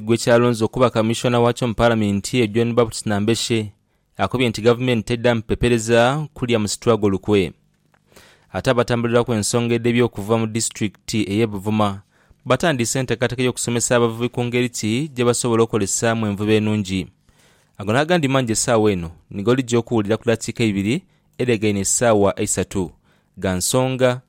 gwe kyalonze okuba Kamishona wakyo mu Palamenti eyo John Baptist Nambeshe akobye nti Gavumenti teddamu pepereza kulya musitulago lukwe. Ate abatambuliraku ensonga edhebye okuva mu Disitulikiti eye Buvuma batandiise entekateka yokusomesa abavubi ku ngeri ki gyebasobola okolesaamu envuba enungi. Ago nagandi mangi esaawa eno nigo olija okuwulira ku dakiika eibiri edhegaine esaawa eisatu. Gha nsonga.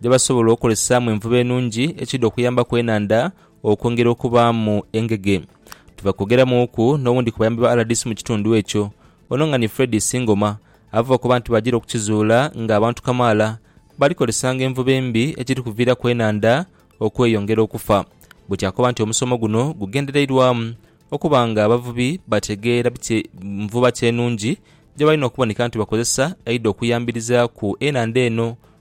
gyebasobola okozesaamu envuba enungi ekidha okuyambaku enhandha okwongera okubaamu engege. Tuva kwogeramuuku n'owundi ku bayambi ba rdc mu kitundu ekyo, ono nga ni Fred Isingoma ava okoba nti bajira okukizuula nga abantu kamaala bali kozesanga envuba embi ekiri kuviiraku enhandha okweyongera okufa buti akoba nti omusomo guno gugendereirwamu okuba nga abavubi bategeera biki nvuba ki enungi gyebalina okuboneka nti bakozesa eidha okuyambirizaaku enhandha eno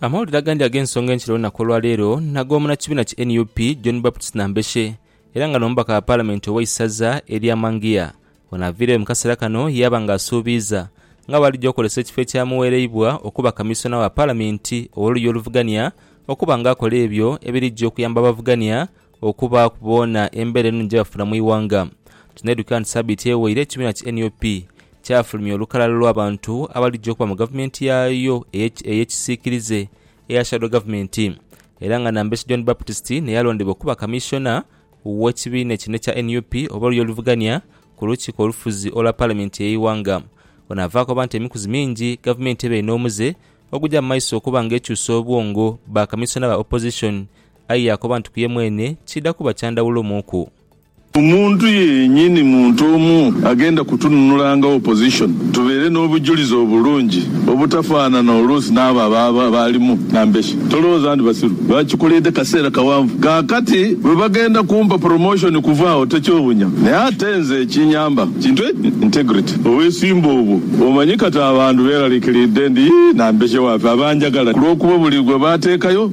Amawulire agandi ag'ensonga enkya olunaku olwaleero nag'omunakibiina ki nup John Baptist Nambeshe era nga n'omubaka wa palamenti ow'eisaza erya Mangia. Ono aviireyo mu kaseera kano yaaba nga asuubiiza nga bwalija okozesa ekifo ekyamuwereibwa okuba kamisona wa palamenti ow'oluya oluvugania okuba nga akola ebyo ebirija okuyamba abavugania okubaaku boona embeera eno gye bafuna mu ighanga. Tunaidhukira nti sabiiti eweire ekibiina ki nup kyafulumya olukalala lw'abantu abaligya okuba mu gavumenti yaayo ey'ekisiikirize eya shadow government era nga Nambeshe John Baptist naye yalondebwa okuba kamissiona w'ekibiina kino ekya nup oba oluya oluvugania ku lukiiko olufuzi olwa palamenti y'eighanga. Ono avaaku aba nti emikuzi mingi gavumenti ebeire n'omuze ogugya mu maiso okuba nga ekyusa obwongo ba kamissiona ba opposition Aye yaakoba nti ku ye mwene tikiidha kuba kya ndhawulo muuku. Omuntu yennyini muntu omu agenda kutununula nga opposition tubeere n'obujulizi obulungi obutafaanana oluusi n'abo abaaba baalimu nambeshe. Tolowooza ndi basiru, baakikoleedde kaseera kawanvu. Kaakati bwe bagenda kumpa promotion kuva agho tekyewuunya. Naye ate nze ekinyamba kintu eki, integrity. Obwesimbu obwo omanyi kati abantu beeraliikiriidde ndi nambeshe waafe abanjagala ku lw'okuba buli gwe baateekayo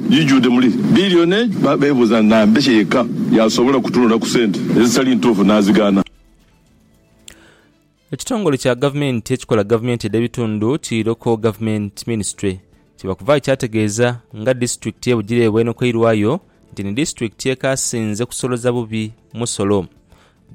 Gijudde muli billion age ba bebuuza nambeshe yekka yasobola kutunula ku sente ezitali ntuufu nazigaana. Ekitongole kya gavumenti ekikola gavumenti edh'ebitundu ki Local Government Ministry kibakuvaayo kyategeeza nga disitulikiti ye Bugiri ebwenokeirwayo nti ni disitulikiti ekaasinze kusoloza bubi musolo.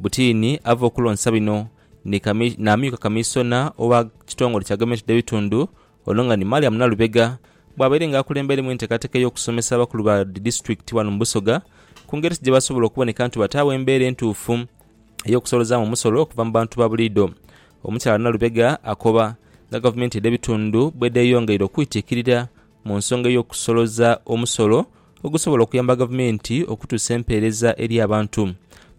Butiini ava okulonsa bino ni n'amyuka kamiisona owa kitongole kya gavumenti edh'ebitundu Ono nga ni Mariam Nalubega bwabaire nga akulembeiremu entekateka eyokusomesa abakulu ba disitulikiti wano mu Busoga ku ngeri ki gyebasobola okuboneka nti bataagho embeera entuufu eyokusolozaamu omusolo okuva mu bantu ba buliidho. Omukyala Nalubega akoba nga gavumenti edhe bitundu bwedheyongeire okwitikirira mu nsonga eyokusoloza omusolo ogusobola okuyamba gavumenti okutuusa empeereza eri abantu.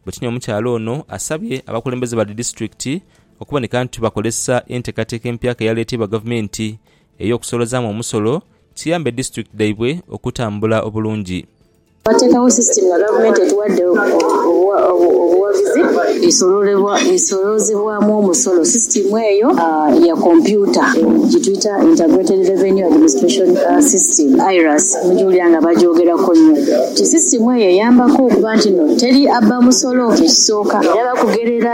Bwekinya omukyala ono asabye abakulembeze ba disitulikiti okuboneka nti bakozesa enteekateeka empyaka eyaleeteibwa gavumenti ey'okusoolozaamu omusolo kiyambe disitulikiti dhaibwe okutambula obulungi. Twateekawo sisitimu nga gavumenti etuwadde obuwagizi esoloozebwamu omusolo. Sisitimu eyo ya kompyuta gye tuyita Integrated Revenue Administration System, IRAS, mugya owulira nga bagyogerako nnyo nti sisitimu eyo eyambako okuba nti teri abba musolo ekisooka era bakugherera.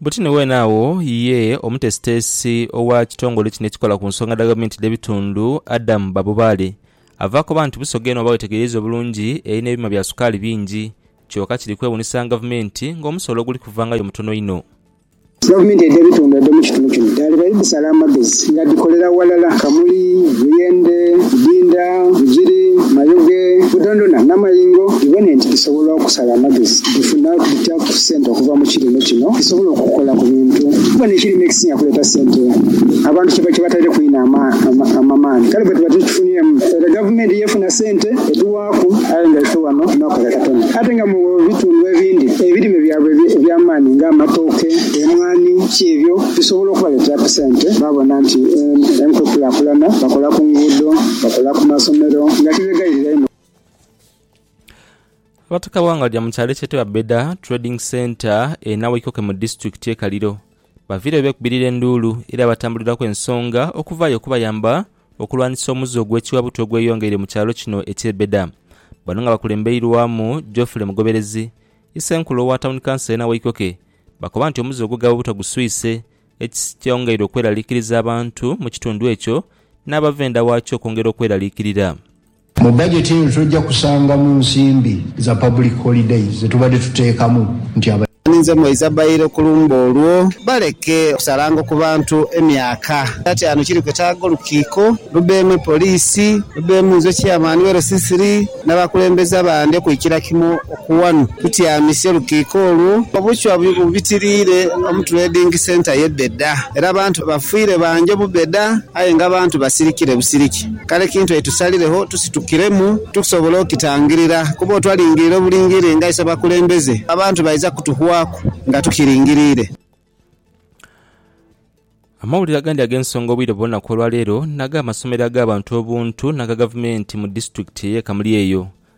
Buti ni weene agho ye omutesiteesi owa kitongole kino ekikola ku nsonga dha gavumenti dh'ebitundu, Adam Babubaale, ava akoba nti Busoga eno bw'oba weetegereiza obulungi erina ebyuma bya sukaali bingi kyoka kiri kwewunisanga gavumenti ng'omusolo oguli kuvangayo mutono inho. Gavumenti edh'ebitundu edh'omu kitundu kino dhaaliba idhisala amagezi nga dhikolera ghalala Kamuli, Buyende, Idinda, Bugiri, Mayoge, Budondona n'amayingo dhibone nti dhisobola okusala amagezi dhifuna Sente okuva mu kirime kino zisobola okukola ku bintu kuba n'ekirime ekisinga kuleeta sente abantu kiba kibataireku inho amaani kale bwetuba tukifuniremu ere gavumenti y'efuna sente edhiwaaku aye nga ife wano tunakola katono ate nga mu bitundu ebindi ebirime byabwe eby'amaani nga amatooke, emwaani ki ebyo bisobola okubaleeteraku sente babona nti enkukulakulana bakola ku nguudo, bakola ku masomero nga kibegayirira inho. Abataka abawangaalira mu kyalo ekyetebwa Beda Trading Centre e Nawaikoke mu disitulikiti ye Kaliro baviireyo beekubirira enduulu era abatambuliraku ensonga okuvaayo okubayamba okulwanisa omuze ogw'ekiwabutu ogweyongeire mu kyalo kino ekye Beda. Bano nga bakulembeirwamu Geoffrey Mugoberezi, Isenkulu owa Tawuni Kanso ye Nawaikoke bakoba nti omuze ogw'egawabutu guswise ekyongeire okweraliikiriza abantu mu kitundu ekyo n'abava enda waakyo okwongera okweraliikirira. Mu bajeti eno tujja kusangamu nsimbi za public holidays zetubadde tuteekamu nti aba. Ninze mweiza baile ku lumbe olwo. Baleke kusalango ku bantu emyaka. Kyataanu kiri kwetaaga olukiiko lubeemu e poliisi, lubeemu nze Chairman we LCCR n'abakulembeze abandi okwikira kimu ku wano tutyamise olukiiko olwo. Obuchwa bubitiriire mu Trading Centre ye Beda era abantu bafiire bangi mu Beda aye nga abantu basirikire busiriki. Kale kintu aye tusaliregho tusitukiremu tukusobola okukitangirira, kuba otwalingirira obulingirire nga isebakulembeze, abantu baidha kutuhwaku nga tukiringiriire. Amawulire agandi ag'ensonga obwire bwona kw'olwaleero n'ag'amasomero ag'abantu obuntu n'aga gavumenti mu disitulikiti ey'e Kamuli eyo.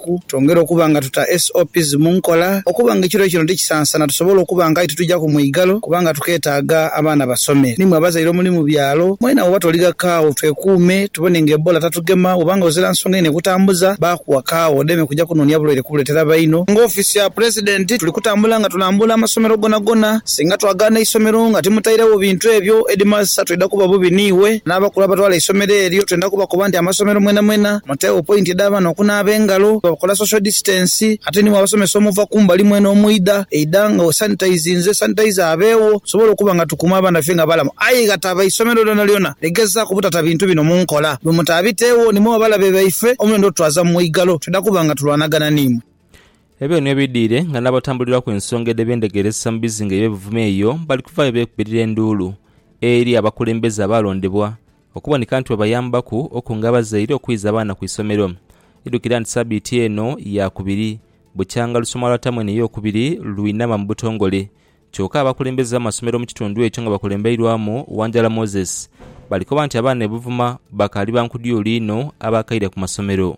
ku, twongere okuba nga tuta SOPs mu nkola okuba nga ekiro kino tikisansana tusobole okuba nga aye titujaku mwigalo kubanga tuketaaga abaana basome. Ni mwe abazaire omuli mu byalo mwena bwoba toliga kaagho twekuume tubone nga Ebola tatugema bwoba nga ozira nsonga inho ekutambuza baakuwa kaagho odeme kuja kunoonia bulwaire kubuletera baino. Nga ofiisi ya Pulezidenti tuli kutambula nga tulambuula amasomero gonagona, singa twagaana eisomero nga timutairegho bintu ebyo Headmaster twidha kuba bubi niiwe n'abakulu abatwala eisomero eryo twenda kubakoba nti amasomero mwenamwena, Tegho point edh'abaana okunaaba engalo nga bakola social distance ate ni bw'abasomesa omuva kumbali mwene omwidha eidha nga we sanitizinze, sanitizer abeegho tusobole okuba nga tukuuma abaana baife nga balamu aye ghataba isomero lyonalyona ligezaaku obutata bintu bino mu nkola. Bwe mutaabiteegho ni muba balabe baife omulendo otutwaza mu mwigalo twidha kuba nga tulwanagana ni imwe. Ebyo niyo bidhire nga n'abatambulirwaku ensonga edho ebendegeresa mu bizinga eby'ebuvuma eyo bali kuvaayo beekubirira enduulu eri abakulembeze abaalondebwa Okuboneka nti bwebayambaku okunga abazaire okwiza abaana ku isomero. Idhukira nti sabiiti eno yaakubiri, bukyanga lusoma lwa tamu eno eyookubiri lwinama mu butongole. Kyoka abakulembeze b'amasomero mu kitundu ekyo nga bakulembeirwamu Wanjala Moses, bali koba nti abaana e Buvuma bakaali ba nkudyuulu inho abaakaire ku masomero.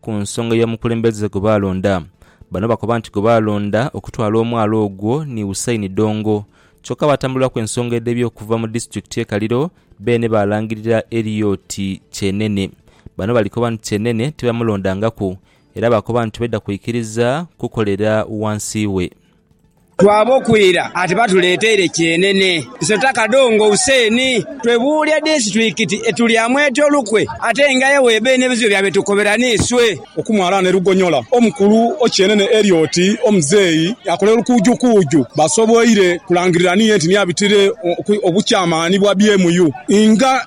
Ku nsonga y'omukulembeze gwe baalonda, bano bakoba nti gwe baalonda okutwala omwala ogwo ni Hussein Dongo kyokka abatambuliraku ensonga edh'ebyo okuva mu disitulikiti ye Kaliro beene baalangirira Eriot Kyenene. Bano balikoba nti Kyenene tibamulondangaku era baakoba nti tibadha kwikiriza kukolera wansi we. Twaaboku ira ati batuleeteire kyenene. Iso ta kadongo Hussein. Twebuulya disitulikiti etulyamu etya olukwe ate nga aye w'ebaire n'ebizibu bya be tukobera n'iswe. Okumwalaana e Lugonyola, omukulu o kyenene Elliot Omuzeeyi akola olukuujukuuju basoboire kulangirira niye nti niye abitire obukyamaani bwa BMU nga.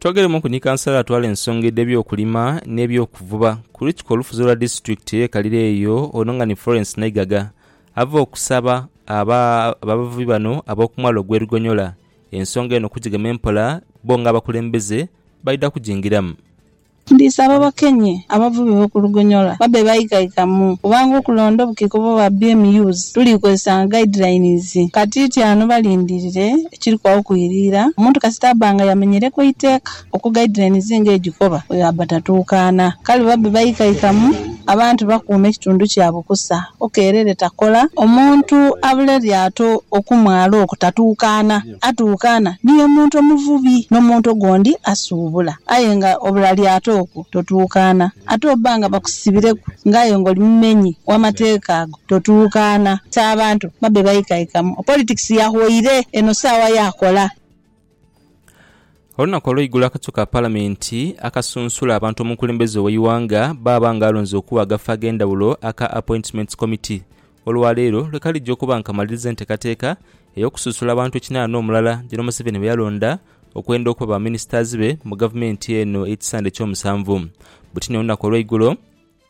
Twogeremu ku ni Kansala atwala ensonga edh'ebyokulima n'ebyokuvuba ku lukiiko olufuzi olwa disitulikiti eye Kalira eyo ono nga ni Florence Naigaga ava okusaba abavubi bano ab'okumwalo ogw'e Lugonyola Ensonga eno okugigema empola bo nga abakulembeze baidha kugingiramu. Ndisaba bakenye abavubi be ku Lugonyola babe baikaikamu kubanga okulonda obukiiko bwa BMUs tuli kozesanga guidelines. Katiiti ano balindirire ekiri kwagho kwiriira omuntu kasita aba nga yamenyereku eiteeka. Okugaidhira emizinga egikoba bwebaba batatuukaana, kale babe baikaikamu, abantu bakuume ekitundu kyabwe kusa, okeerere takola. Omuntu abule lyato okumwalo okwo tatuukaana, atuukaana ni y'omuntu omuvubi n'omuntu ogondi asuubula. Aye nga obula lyato okwo totuukaana. Ate oba nga bakusibireku nga aye nga oli mumenyi w'amateeka ago, totuukaana. Ti abantu babe baikaikamu. Politics yahwaire, eno saawa ya kola. Olunaku olweigulo akakiiko ka palamenti akasunsula abantu omukulembeze oweighanga baaba nga alonze okuwa agafo agendhawulo aka Appointments Committee olwaleero lwekalija okuba nga kamaliriza entekateka eyokususula abantu ekinana omulala jeno Museveni beyalonda okwenda okuba ba ministers be mu gavumenti eno ekisande ekyomusanvu butini olunaku olweigulo.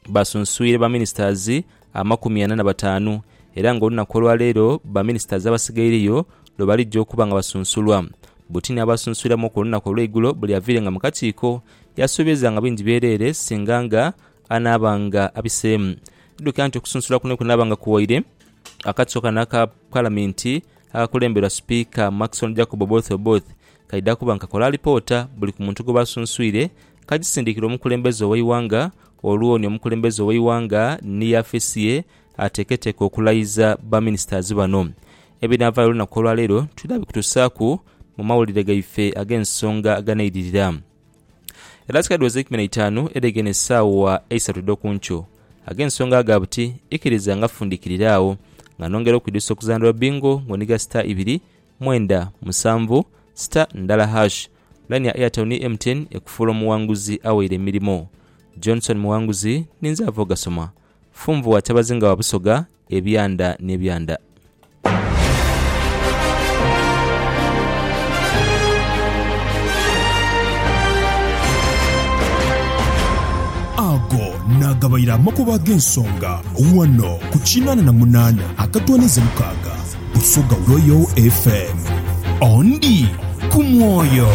baasunsuire ba ministers amakumi ana na bataanu, era nga olunaku olwa leero ba ministers abasigaireyo lwe balija okuba nga basunsulwa. Butini abaasunsuiramuku olunaku olweigulo buli aviire nga mu kakiiko yasuubiza nga bingi byereere singa nga anaaba nga abiseemu. Tidukira nti okusunsula kuno kunaaba nga kuwaire akakiiko kano aka palamenti akakulemberwa sipiika Maxon Jacob Oboth Oboth Kaidha kuba nga kakola alipoota buli ku muntu gwebaba sunsuire, kagisindikira omukulembeze oweighanga, olwo ni omukulembeze oweighanga ni yafesi ye ateketeke okulayiza ba ministers bano. Ebinavayo olunaku olwaleero twidha bikutusaaku mu mawulire gaife agensonga aganeidirira. Edhakika dhiweze eikumi neitaanu edhegeine esaawa eisatu edhokunkyo, agensonga ago gabuti ikiriza nga fundikirira agho nga nongera okwidhusa okuzanira obingo nga onhiga star ibiri mwenda musanvu star ndala hash Line ya Airtel ni MTN ekufuula omuwanguzi awaire emirimo. Johnson Muwanguzi ninze ava ogasoma. Funvu wa Kyabazinga wa Busoga ebyanda n'ebyanda. Ago naagabaire amakubo ag'ensonga wano ku kinaana na munaana akatooneze mukaaga. Busoga Royal FM. Ondi ku mwoyo.